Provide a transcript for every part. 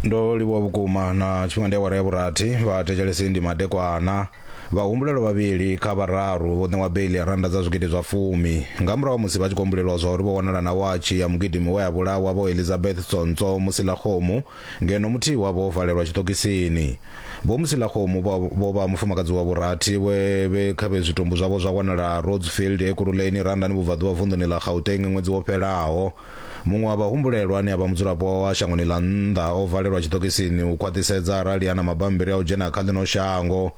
ndo livhuwa vhukuma na tshifhinga ndi awara ya vhurathi vhathetshelesi ndi madekwana vhahumbulelwa vhavhili kha vhararu vho ṋewa beiḽi ya rannda dza zwigidi zwa fumi nga murahu ha musi vha tshi khou humbulelwa zwa uri vho wanala na watshi ya mugidimi we a vhulawa vho elizabeth tsontswo musilakgomu ngeno muthihi wavho o valelwa tshiṱokisini vho musilakgomu vho- vho vha mufumakadzi wa vhurathi we vhe kha vhe zwitumbu zwavho zwa wanala rodsfield ekuruleni randani vhubvaḓuvha vunḓuni ḽa gauteng ṅwedzi wo fhelaho Muṅwe wa vhahumbulelwa ane a vha mudzulapo wa shangoni ḽa nnḓa o valelwa tshiṱokisini u khwaṱhisedza arali a na mabammbiri a u dzhena kha ḽino shango.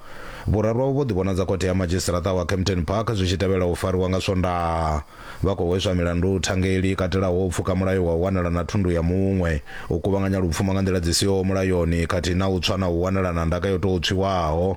Vhuraru avho vho ḓivhonadza khothe ya madzhisiṱaraṱa wa Kempton Park zwi tshi tevhela u fariwa nga Swondaha. Vha khou hweswa milandu thangeli i katelaho u pfuka mulayo wa u wanala na thundu ya muṅwe, u kuvhanganya lupfumo nga nḓila dzi siho mulayoni khathihi na u tswa na u wanala na ndaka yo tou tswiwaho.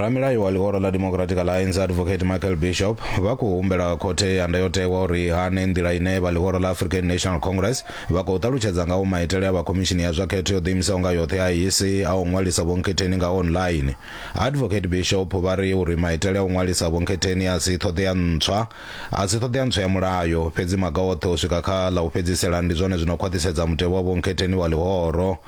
ramilayi wa ḽihoro ḽa democratic alliance advocate michael bishop vha khou humbela khothe ya ndayotewa uri hane nḓila ine vha ḽihoro ḽa african national congress vha khou ṱalutshedza ngaho maitele a vha khomishini ya zwa khetho yo ḓiimisaho nga yoṱhe a isi a u ṅwalisa vhonkhetheni nga online advocate bishop vha ri uri maitele a u ṅwalisa vhonkhetheni a si ṱhoḓea ntswa A si ṱhoḓea ntswa ya mulayo, fhedzi maga oṱhe u swika kha ḽa u fhedzisela ndi zwone zwi no khwaṱhisedza mutevhe wa vhonkhetheni wa ḽihoro.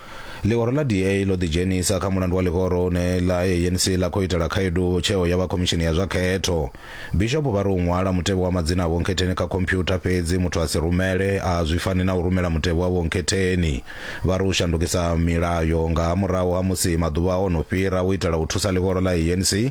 Ḽihoro ḽa DA ḽo ḓidzhenisa kha mulandu wa ḽihoro une ḽa ANC ḽa khou itela khaedu tsheo ya vha khomishini ya zwa khetho. Bishopo vha ri u ṅwala mutevhe wa madzina a vhonkhetheni kha khomphyutha fhedzi muthu a si rumele a zwi fani na u rumela mutevhe wa vhonkhetheni. Vha ri u shandukisa milayo nga murahu ha musi maḓuvha o no fhira u itela u thusa ḽihoro ḽa ANC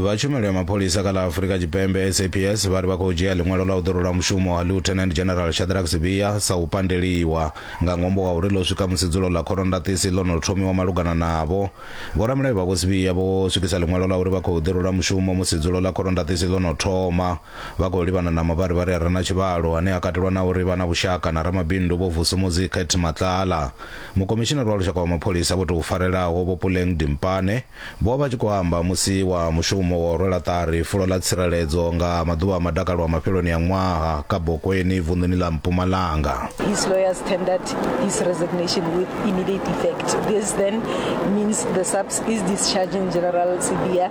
vha tshumelo ya mapholisa kha ḽa afurika tshipembe saps vha ri vha khou dzhia ḽiṅwalo ḽa u ḓorola mushumo ha lieutenant general shadrack sibia sa u pandeliwa nga ṅwambo wa uri ḽo swika musi dzulo ḽa khorondakisi ḽo no thomiwa malugana navho vhoramilayo vha vho sibia vho swikisa ḽiṅwalo ḽa uri vha khou ḓorola mushumo musi dzulo ḽa khorondakisi ḽo no thoma Vha khou livhana na mavharivhari a re na tshivhalo ane a katelwa na uri vha na vhushaka na ramabindu Vho Vusumuzi Kate Matlala. Mukomishinari wa Lushaka wa Mapholisa vho tou farelaho Vho Puleng Dimpane vho vha tshi khou amba musi wa mushumo wa u rwela ṱari fulo ḽa tsireledzo nga maḓuvha a madakalo a mafheloni a ṅwaha Kabokweni vunḓuni ḽa Mpumalanga. His lawyers tendered his resignation with immediate effect. This then means the SAPS is discharging General Sibiya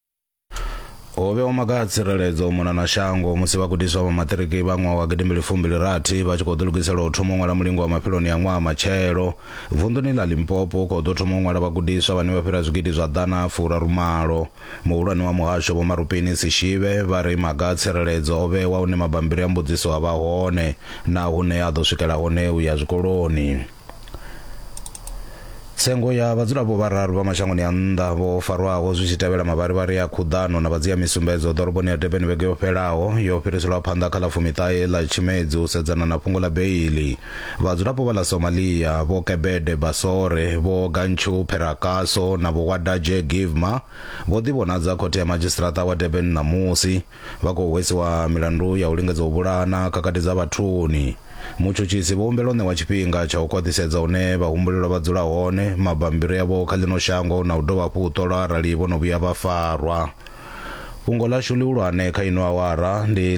ho vhewa maga a tsireledzo u mona na shango musi vhagudiswa vha maṱiriki vha ṅwaha wa gidimbili fumbili rathi vha tshi khou ḓilugisela u thoma u ṅwala mulingo wa mafheloni ya ṅwaha matshelo vunḓuni ḽa limpopo u khou ḓo thoma u ṅwala vhagudiswa vhane vha fhira zwigidi zwa ḓana furarumalo muhulwane wa muhasho vho marupini sishive vha ri maga a tsireledzo o vhewa hune mabambiri a mbudziso a vha hone na hune a ḓo swikela hone u ya zwikoloni tsengo ya vhadzulapo vhararu vha mashangoni a nnḓa vho farwaho zwi tshi tevhela mavharivhari a khuḓano na vhadzia misumbedzo ḓoroboni ya durban vhege yo fhelaho yo fhiriselwa phanḓa kha ḽa fumiṱahe ḽa tshimedzi u sedzana na fhungo ḽa beili vhadzulapo vha ḽa somalia vho kebede basore vho gantshu pherakaso na vho wadaje givma vho ḓivhonadza khothe ya madzhisiṱaraṱa wa durban ṋamusi Vha khou hwesiwa milandu ya u lingedza u vhulaha na khakhathi dza vhathuni. Mutshutshisi vho humbela u ṋewa tshifhinga tsha u khwaṱhisedza hune vhahumbulelwa vha dzula hone, mabammbiri avho kha ḽino shango na u dovha hafhu u ṱolwa arali vho no vhuya vha farwa. Fhungo ḽashu ḽihulwane kha ino awara ndi.